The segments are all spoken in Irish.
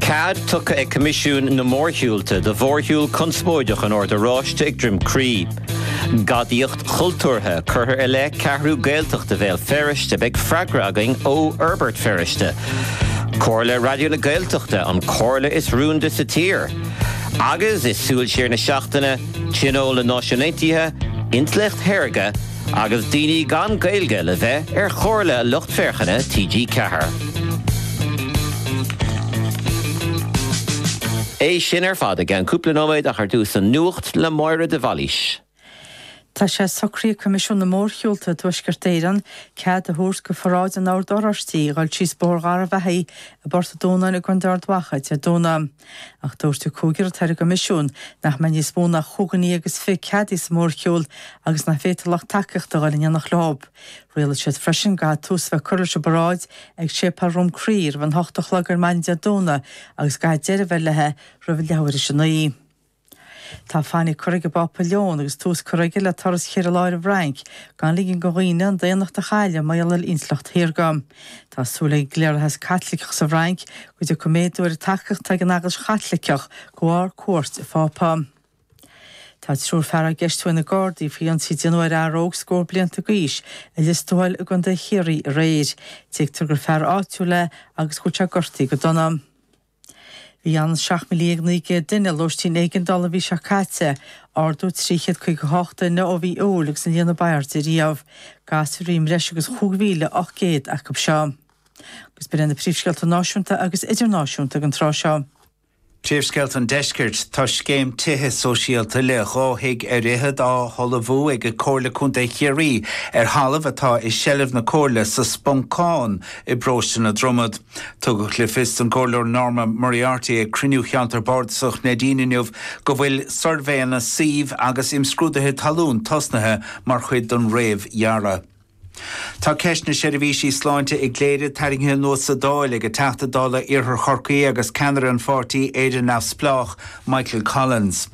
Cead tugtha ag Coimisiún na Mórshiúlta do mhórshiúl conspóideach an Oird Oráistigh ag Droim Crí. Gadaíocht chultúrtha curtha i leith Ceathrú Gaeltachta Bhéal Feirste, beidh freagra againn ó Fhorbairt Feirste. Comhairle Raidió na Gaeltachta, an comhairle is rúnda sa tír. Agus i Súil Siar na Seachtaine, Tionól na Náisiún Aontaithe, Intleacht Shaorga, agus daoine gan Gaeilge le bheith ar chomhairle lucht féachana TG Ceathair. É sin ar fad i gceann cúpla nóiméad ach ar dtús an nuacht le Máire de Bhailís. Tá sé socraithe ag Coimisiún na Mórshiúlta i dTuaisceart Éireann cead a thabhairt do pharáid an Oird Oráistigh a ghoil síos Bóthar Gharbh Achaidh i bPort an Dúnáin i gContae Ard Mhacha Dé Domhnaigh. Ach dúirt an cúigear ar an gCoimisiún nach mbeidh níos mó ná chúig dhuine agus fiche ceadaithe sa mhórshiúl agus nach bhféadfaí lucht tacaíochta a ghoil in éineacht leo. Rialaigh siad freisin go gcaithfidh tús a bheith curtha leis an bparáid ag Séipéal Dhroim Crí roimh an hocht a chlog ar maidin Dé Domhnaigh agus go gcaithfidh deireadh a bheith léithi roimh leathuair tar éis a naoi. Tá fainic curtha ag an bPápa Leon agus tús curtha aige le turas ceithre lá ar an bhFrainc gan ligean do dhaoine an daonnacht a chailleadh mar gheall ar intleacht shaorga. Tá súil ag an gcliarlathas Caitliceach sa bhFrainc go dtiocfaidh méadú ar an tacaíocht atá ag an Eaglais Chaitliceach de bharr cuairt an Phápa. Tá triúr fear á gceistiú ag na Gardaí faoi ionsaí a déanadh ar fhear óg scór blianta d'aois i Lios Tuathail i gContae Chiarraí aréir. Tuigtear gur fear áitiúil é agus go bhfuil sé gortaithe go dona. Bhí ionann is 17,900 duine i lóistín éigeandála an mhí seo caite, ardú 358 duine ó mhí Iúil agus an líon ab airde riamh. Gasúir i mbreis agus 5,800 acu seo. Agus b'in iad na príomhscéalta náisiúnta agus idirnáisiúnta ag an tráth seo. Príomhscéalta an deiscirt, Tá scéim tithe sóisialta le dhá thigh ar fhichead á hullmhú ag Comhairle Contae Chiarraí ar thalamh atá i seilbh na Comhairle sa Sponcán i bparóiste na Dromad. Tugadh le fios don gComhairleoir Norma Moriarty ag cruinniú Cheantar Bardasach Neidín inniu go bhfuil suirbhéanna suímh agus imscrúduithe talún tosnaithe mar chuid den réamhdhearadh. Tá ceist na seirbhísí sláinte i gCléire tarraingthe anuas sa Dáil ag an dTeachta Dála Iarthar Chorcaí agus ceannaire an pháirtí, Éire Neamhspleách, Michael Collins.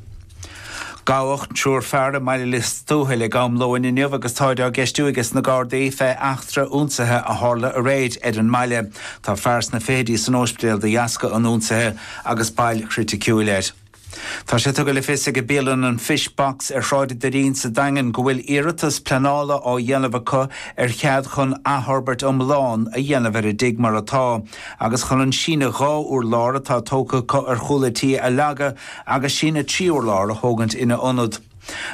Gabhadh triúr fear i mBaile Lios Tuathail ag am lóin inniu agus táid á gceistiú ages na Gardaí fé eachtra ionsaithe a tharla aréir ar an mbaile. Tá fear sna fichidí san óispidéal de dheasca an ionsaithe agus bail chriticiúil air. Tá sé tugtha le fios ag an mbialann an Fish Box ar Shráid an Doirín sa Daingean go bhfuil iarratas pleanála á dhéanamh acu ar chead chun athfhorbairt iomlán a dhéanamh ar an dtigh mar atá agus chun an síneadh dhá urlár atá tógtha acu ar chúl an tí a leagadh agus síneadh trí urlár a thógaint ina ionad.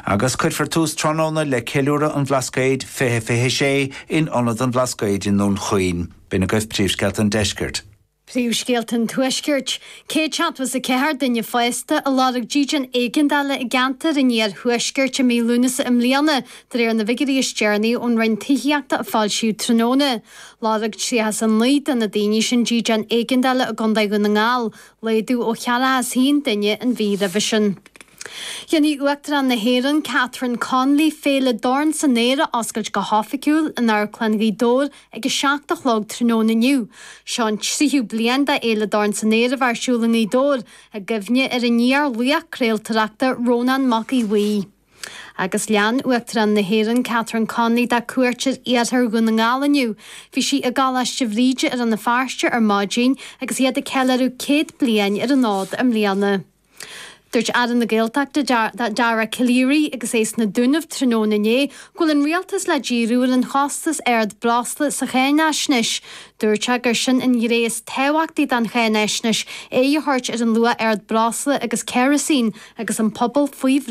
Agus cuirfear tús tráthnóna le ceiliúradh an Bhlascaoid 2026 in Ionad an Bhlascaoid i nDún Chaoin. B'in agaibh príomhscéalta an Deiscirt. Príomhscéalta an Tuaiscirt, 174 duine fásta a lorg dídean éigeandála i gceantar an iarthuaiscirt i mí Lúnasa i mbliana de réir na bhfigiúirí is deireanaí ón Roinn Tithíochta a foilsíodh tráthnóna. Lorg 39 de na daoine sin dídean éigeandála i gContae Dhún na nGall, Laghdú ó 41 duine an mhí roimhe sin. Dhéanfaidh Uachtarán na hÉireann, Catherine Connolly, Féile Dorn san Aer a oscailt go hoifigiúil in Amharclann Ghaoth Dobhair ag 7 a chlog tráthnóna inniu. Seo an tríú bliain d'Fhéile Dorn san Aer a bheith ar siúl i nGaoth Dobhair, i gcuimhne ar an fhíorlaoch craoltóireachta Rónán Mac Aodh Bhuí. Agus lean Uachtarán na hÉireann Catherine Connolly dá cuairt ar iarthar Dhún na nGall inniu. Bhí sí i gColáiste Bhríde i Rann na Feirste ar maidin agus iad ag ceiliúradh céad bliain ar an fhód i mbliana. Dúirt Aire na Gaeltachta, Dara Calleary, agus é sna Dúnaibh tráthnóna inné go bhfuil an Rialtas le díriú ar an chostas ard breosla sa cháináisnéis. Dúirt sé gur sin an ghné is tábhachtaí den cháináisnéis, aghaidh a thabhairt ar an luach ard breosla agus ceirisín agus an pobal faoi